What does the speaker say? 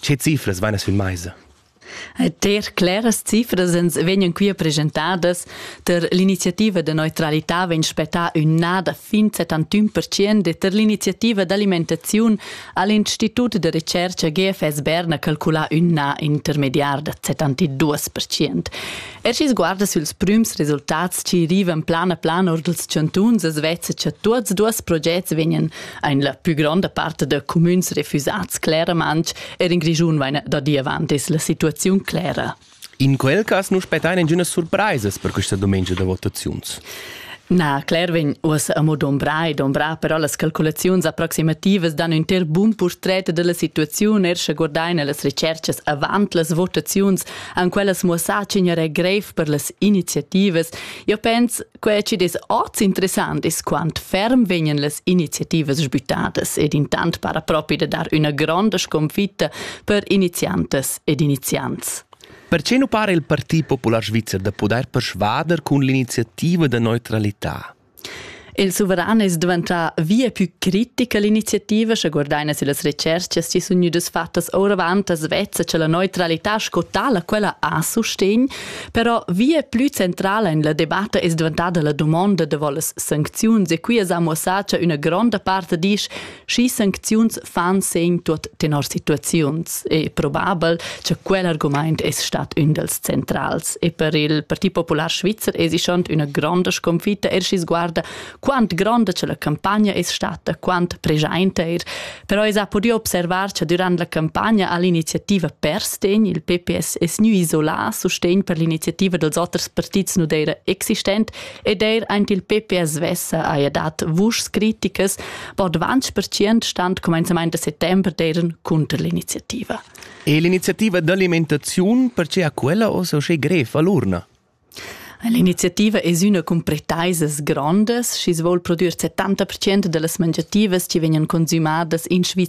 Che cifras vegnan sün meisa? Ter claras cifras ens vegnan qui presentadas. Per l'iniziativa de neutralità vegn spettà ün na da fin 71% e per l'iniziativa d'alimentaziun ha l'Institut de recerca GFS Berna calculà ün na intermediar da 72%. Er schi sguarda süls prüms resultats chi rivan plan a plan or dels chantuns, es vezza cha tuots duos progets vegnan ein la più gronda parte da cumüns refusats cleramente er in Grischun vaina da dir avant es la situaziun clera. In quel cas nu spettain ingünas surpraisas per questa dumengia da votaziuns. Na, Claire vegn uossa amo dombra e dombra, però las calculaziuns approximativas dan ün ter bun portret della situaziun, er sche guardain las recerchas avant las votaziuns, an quellas muossà cigner è grev per las iniziativas. Io pens Quei chi'd es hoz interessant es quant ferm vegnan las iniziativas sbüttadas ed intant para propi da dar üna gronda sconfitta per iniziantas ed iniziants. Perche nu para il Partit Popular Svizzer da pudair persvader cun l'iniziativa da neutralità? Il suveran es diventà via più critic a l'iniziativa, sche guardaina si las recerchas chi sun gnüdas fattas ouravant as vezza cha la neutralità sco tala quella ha sustegn Però via plü centrala in la debatta es dvantada la dumonda davo las sancziuns e qui es amo sa cha üna gronda part disch schi sancziuns fan segn tuot tenor situaziuns e probabel cha quel argumaint es stat ün dals centrals. E per il Parti Popular Svizzer es ischant üna gronda sconfitta, er schi sguarda quant gronda che la campagna è stata, quant presente er. Però es ha podido observar che durant la campagna ha l'iniziativa Perstegn, il PPS, es gnü isolà sustegn per l'iniziativa dels oters partits nu d'eira existent ed eir aint il PPS svessa haja dat vuschs criticas. Bod 20% stand comenzamaint da settember d'eiran cunter l'iniziativa. E l'iniziativa d'alimentaziun perche ha quella ossa uschè grev a l'urna? L'iniziativa es üna cun pretaisas grondas, schi's voul prodüer 70% da las mangiativas chi vegnan consümadas in Svizra.